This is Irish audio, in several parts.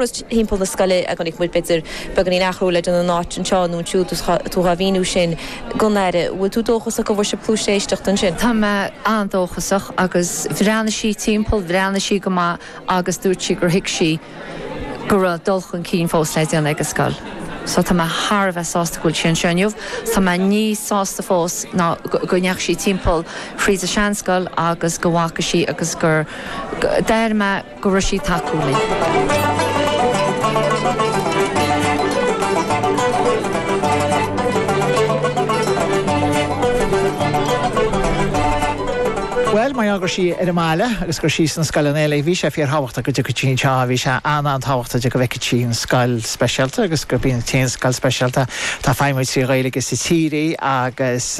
timpeall na scoile a chonaic muid, b'fhéidir beagáinín athrú le déanamh in áit anseo nó ansiúd is tá tú dhá mhíniú sin gon Aire. Bhfuil tú dóchasach go bhfuair sibh cluas éisteachta ansin? Tá mé an-dóchasach agus bhreathnaigh sí timpeall, bhreathnaigh sí go maith agus dúirt sí gur thuig sí go raibh dul chun cinn fós le déanamh ag an scoil. So tá mé thar a bheith sásta go bhfuil sí anseo inniu. Tá mé níos sásta fós ná go ndeachaigh sí timpeall thríd an seanscoil agus go bhfaca sí agus gur, d'airigh mé, go raibh sí ag tacú linn. Bhuel, mar gheall gur sí ar an mbaile agus gur sí sna scoileanna eile, bhí sé fíor thábhachtach go dtiocfadh sí anseo, bhí sé an-an-tábhachtach go bhfeicfeadh sí an scoil speisialta agus gurb í an t-aon scoil speisialta atá ag feidhmiú trí Ghaeilge sa tír í agus,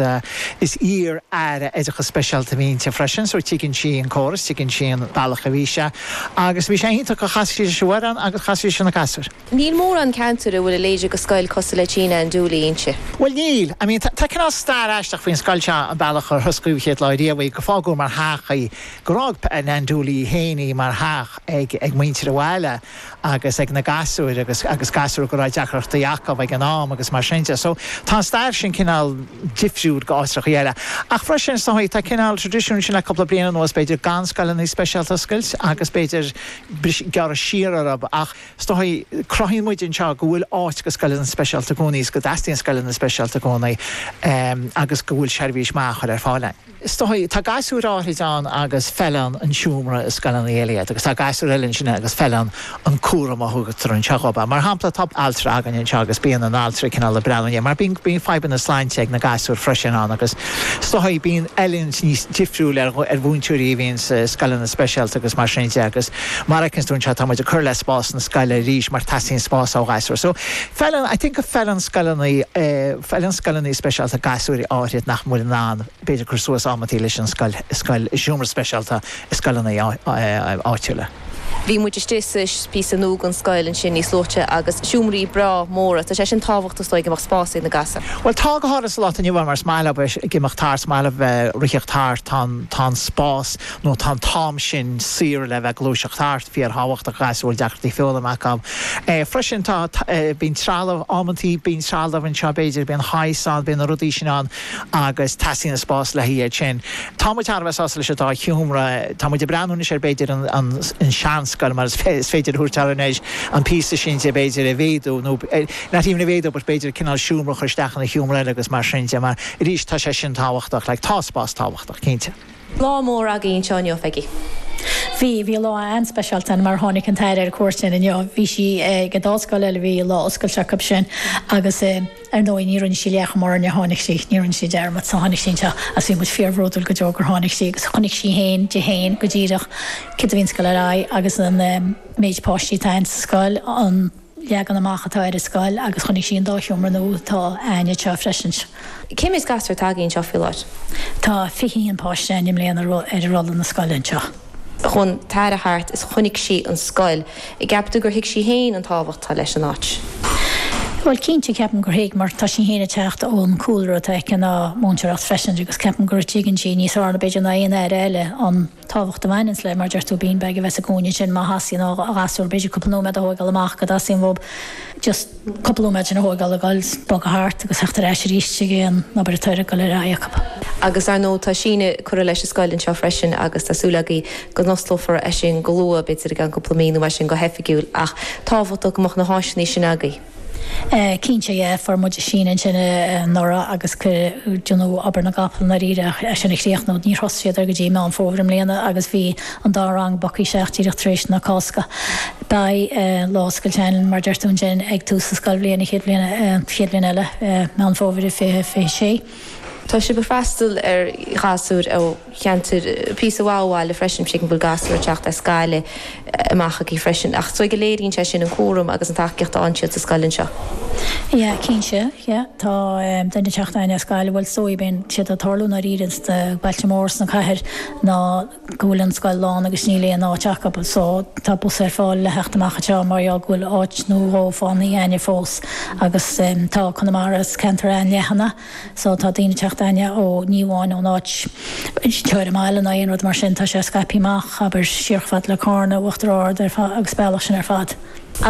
Is iar-Aire Oideachas Speisialta a bhí inti freisin so tuigeann sí an córas, tuigeann sí an bealach a bhí sé agus bhí sé iontach gur chas sí leis an bhfoireann agus chas sí leis na gasúir. Níl mórán ceantair a bhfuil a leithéid go scoil cosúil le Tigh Nan Dooley inti. Bhuel níl. I mean tá cineál stair aisteach faoin scoil seo, an bealach ar osclaíodh an chéad lá riamh í, gur fágadh mar theach í, gur fhág Nan Dooley í féin í mar theach ag muintir an bhaile. agus ag na gasúir agus agus gasúir go raibh deacrachtaí acu ag an am agus mar sin de. So tá an stair sin cineál difriúil go áitreachaí eile. Ach freisin is dóigh tá cineál tradisiún sin le cúpla bliain anuas b'fhéidir gan scoileanna speisialta a oscailt agus b'fhéidir gearradh siar orthu ach is dóigh cruthaíonn muid anseo go bhfuil áit go scoileanna speisialta i gcónaí is go dteastaíonn scoileanna speisialta i gcónaí agus go bhfuil seirbhís maith a chur ar fáil ann. Is dóigh, tá gasúir áithrid ann agus feileann an seomra i scoileanna eile iad agus tá gasúir eile ansin agus feileann an cúram a thugtar anseo dhób. Mar shampla, tá altra againn anseo agus bíonn an t-altra ag cineál ag breathnú air mar bíonn fadhbanna sláinte ag na gasúir freisin ann agus is dóigh, bíonn oiliúint níos difriúil ar mhúinteoirí a bhíonn sa scoileanna speisialta agus mar sin de agus mar a fheiceanns tú anseo, tá muid ag cur le spás na scoile arís mar teastaíonn spás ó ghasúir. So. Feileann, I think go bhfeileann scoileanna, feileann scoileanna speisialta gasúir áithrid nach bhfuil in ann, b'fhéidir, cur suas amanntaí leis an scoil, scoil, seomra speisialta i scoileanna áitiúla. Bhí muid istigh sa, píosa nua den scoil ansin níos luaithe agus seomraí breá móra, tá sé sin tábhachtach is dóigh go mbeadh spás ag na gasúir. Bhuel, tá go háithrid sa lá atá inniu ann mar is maith leob a bheith ag imeacht thart, is maith leob a bheith ag ritheacht thart, tá an, tá an spás, nó tá an t-am sin saor le bheith ag gluaiseacht thart, fíor-thábhachtach, go ghasúir a bhfuil deacrachtaí foghlaim acu. Freisin, tá, bíonn trealamh, amantaí bíonn trealamh anseo, b'fhéidir, bíonn shaghas ann, bíonn na rudaí sin ann agus teastaíonn an spás le haghaidh sin. Tá muid thar a bheith sásta leis an dá sheomra. Tá muid ag breathnú anois ar, b'fhéidir, an seanscoil mar is féidir a thabhairt air anois, an píosa sin de, b'fhéidir, a mhéadú nó, not even a mhéadú but b'fhéidir cineál seomra a chur isteach ina sheomra eile agus mar sin de mar, arís, tá sé sin tábhachtach, like, tá spás tábhachtach, cinnte. Lá mór agaí anseo inniu ag. Bhí, bhí lá an-speisialta ann mar tháinig an tAire ar cuairt againn inniu. Bhí sí ag an dá scoil eile, bhí lá oscailte acu sin agus ar ndóigh ní rinne sí leathchuma orainne, tháinig sí, ní rinne sí dearmad, so tháinig sí anseo agus bhí muid fíorbhródúil go deo gur tháinig sí agus chonaic sí féin, di féin go díreach cén chaoi a mbíonn an scoil ag dul ar aghaidh agus an méid páistí atá ann sa scoil, an. leagan amach atá ar an scoil agus chonaic sí an dá sheomra nua atá againn anseo freisin. Cé méid gasúr atá agaí anseo faoi láthair? Tá fiche haon páiste againn i mbliana ar rolla na scoile anseo. Chuaigh an tAire thart is chonaic sí an scoil. An gceapann tú gur thuig sí féin an tábhacht atá leis an áit? Bhuel cinnte ceapaim gur thuig mar tá sí féin ag teacht ón cúlra atá aici ná múinteoireacht freisin agus ceapaim go dtuigeann sí níos fearr ná b'fhéidir ná aon Aire eile an Tábhacht a bhaineanns le, mar deir tú, beanbag a bheith sa gcúinne sin má theastaíonn ó ghasúr bidh, cúpla nóiméad a thóigeáil amach go dteastaíonn uathub, just cúpla nóiméad sin a thóigeáil ag dul bogadh thart agus theacht ar ais arís chuig an obair atá ag dul ar aghaidh acu. Agus ar ndóigh tá síneadh curtha leis an scoil anseo freisin agus tá súil agaí go n-osclófar é sin go luath, b'fhéidir i gceann cúpla mí nó mar sin go hoifigiúil, ach tábhachtach go mbeadh na háiseanna sin agaí. Cinnte yeah, fuair muid síneadh ansin anuraidh agus cuireadh obair na gcapall i ndáiríre é sin a chríochnú. Níor thosaigh siad air go dtí Meán Fómhair i mbliana agus bhí an dá rang bogtha isteach díreach tar éis na Cásca. Beidh lá oscailte ann, mar deir tú ansin, ag tús an scoilbhliain an chéad bhliain, chéad bhliain eile, Meán Fómhair 2026. Tá sé ag freastal ar ghasúir ó cheantar píosa maith ó bhaile freisin, tuigim go bhfuil gasúir ag teacht as Gaillimh amach agaí freisin. Ach is dóigh go léiríonn sé sin an cúram agus an tacaíocht a fhaigheann siad sa scoil anseo. Yeah, cinnte, yeah. Tá duine ag teacht againn as Gaillimh, bhuel is dóigh bíonn sé ag tarlú i ndáiríre sna bailte móra sna cathair ná. go bhfuil an scoil lán agus níl aon áit acu so tá bus ar fáil le theacht amach anseo mar gheall go bhfuil áit nó dhó fanta againne fós agus tá Conamara is ceantar an-leathan é so tá daoine teacht againne ó ní amháin ón áit seo ar an mbaile ná aon rud mar sin tá sé scaipthe amach abair siar chomh fada le Carna Uachtar Ard ar fad agus an bealach sin ar fad.